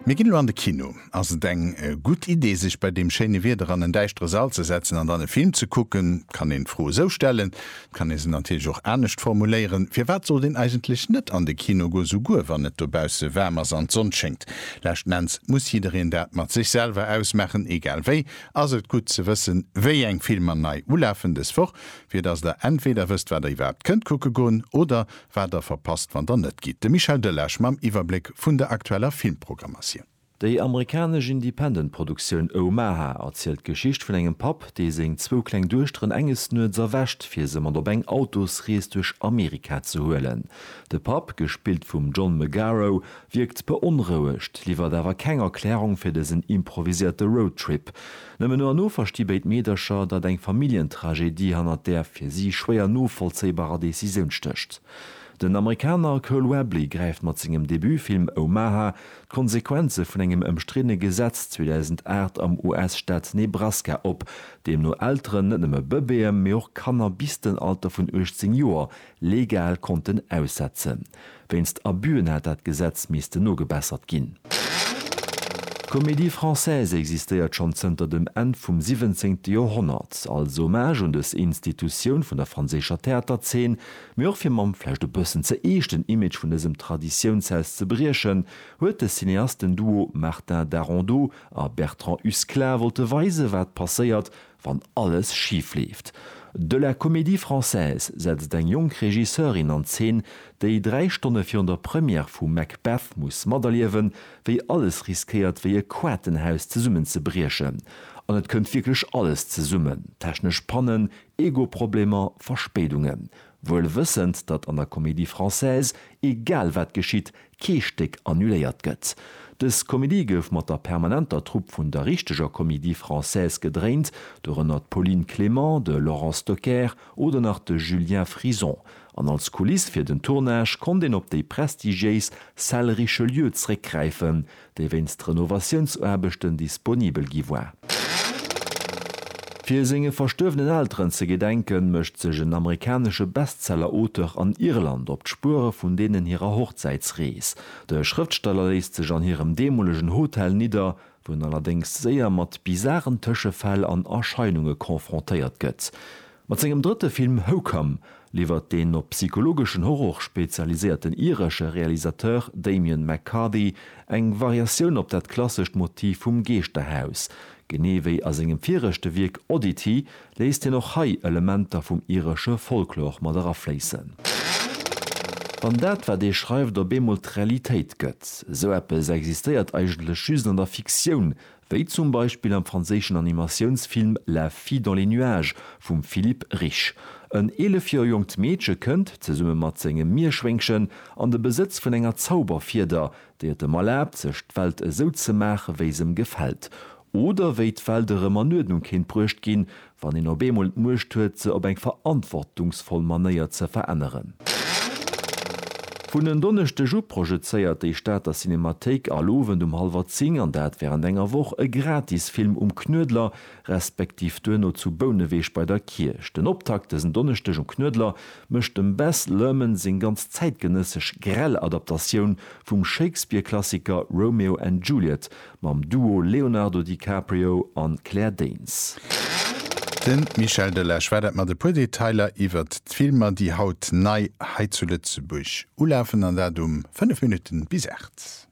Mir ginn elo an de Kino. Ass et eng gutt Idee sech bei deem schéine Wieder an en däischtere Sall ze setzen an dann e Film ze kucken? Et kann een d'Fro esou stellen, et kann ee se natierlech och anescht formuléieren, Firwat sollt een eigentlech net an de Kino goen, souguer wann et dobausse waarm ass an d'Sonn schéngt? Leschten Enns muss jiddereen dat mat sech selwer ausmaachen. Egal wéi ass et gutt ze wëssen, wéi eng Filmer nei ulafen dës Woch, fir datt der entweder wësst, wat der iwwerhaapt kënnt kucke goen oder wat der verpasst wann der net gitt. De Michel Delage mam Iwwerbléck vun der aktueller Filmprogrammatioun. Déi amerikanesch Independent-Produktioun Omaha erzielt d'Geschicht vun engem Papp, dee seng zwou kleng Duechteren enges Nuets erwächt, fir se mat op eng Autosrees duerch Amerika ze huelen. De Papp, gespillt vum John Magaro, wierkt beonrouegt, liwwert awer keng Erklärung fir dësen improviséierte Roadtrip. Nëmmen no an no versti béid Meedercher, datt eng Familljentragedie hannert där fir si schwéier novollzéibarer Decisioun stécht. Den Amerikaner Cole Webley gräift mat sengem Debutfilm Omaha d'Konsequenze vun engem ëmstriddene Gesetz 2008 am US-Staat Nebraska op, deemno Elteren net nëmme Bëbeeë mee och Kanner bis den Alter vun 18 Joer legal konnten aussetzen. Wéinst Abüen hätt dat Gesetz missten nogebessert ginn. D'Comédie Française existéiert schonn zënter dem Enn vum siwwenzéngte Joerhonnert, als Hommage un dës Institutioun vun der franséischer Theaterzeen, mee och fir mam vläicht e bëssen ze eeschten Image vun dësem Traditiounshaus ze briechen, huet de Cineastenduo Martin Darondeau a Bertrand Husklah wollte weisen, wat passéiert, wann alles schif leeft. De La Comédie Française setzt eng jonk Regisseurin an Zeen, déi dräi Stonne virun der Première vu Macbeth muss materliewen, wéi alles riskéiert wéi e Quaartenhaus zesummenzebriechen. An et kënnt wierklech alles zesummen, technesch Pannen, Ego-Problemer, Verspéidungen. Wuel wëssend, datt an der Comédie Française egal wat geschitt, kee Stéck annuléiert gëtt. Dës Komedie gouf mat der permanenter Trupp vun der richteger Comédie Française gedréint, dorënner d'Pauline Clément, de Laurent Stocker oder nach de Julien Frison, an als Kuliss fir den Tournage konnt een op déi prestigiéis Salle Richelieu zréckgräifen, déi wéinst Renovatiounsaarbechten disponibel gi war. Fir senge verstuerwenen Elteren ze gedenken, mécht sech en amerikanesche Bestseller-Auteur an Irland op d'Spuere vun deenen hirer Hochzäitsrees. De Schrëftsteller léisst sech an hirem deemolegen Hotel nidder, wou en allerdéngs séier mat bizaren Tëschefäll an Erscheinunge confrontéiert gëtt. Mat sengem drëtte Film Hocome liwwert den op psychologeschen Horror spezialiséierten iresche Realisateur Damian McCarthy eng Variatioun op dat klassescht Motiv vum Geeschterhaus. Genee wéi a sengem viregte Wierk Oddity léisst hien och hei Elementer vum iresche Folklor mat erafléissen. Wann dat, wat ee schreift, op eemol d'Realitéit gëtt. Esou eppes existéiert eigentlech just an der Fiktioun, Wéi zum Beispill am franséischen Animatiounsfilm La fille dans les nuages vum Philippe Rich. En 11 Joer jonkt Meedche kënnt, zesumme mat sengem Mierschwéngchen, an de Besëtz vun enger Zauberfieder, déi et em erlaabt, sech d'Welt esou ze maache wéi s'em gefält. Oder wéi d'Welt erëm an Uerdnung kéint bruecht ginn, wann een op eemol d'Muecht huet se op eng verantwortungsvoll Manéier ze veränneren. Vun en Donneschdeg u projezéiert déi Stater Cinemathéik all Owend um hallwer 10, an dat wärend enger Woch, e Gratisfilm um Knuedler, respektiv duerno zu Bouneweg bei der Kierch. Den Optakt dësen Donneschdeg um Knuedler mécht dem Baz Luhrmann seng ganz zäitgenëssesch grell Adaptatioun vum Shakespeare-Klassiker Romeo and Juliet Mam Duo Leonardo DiCaprio an Claire Danes. De Michel Delage war dat mat e puer Detailer iwwert d'Filmer, déi haut nei hei zu Lëtzebuerg ulafen, an dat um 5 Minutten bis 8.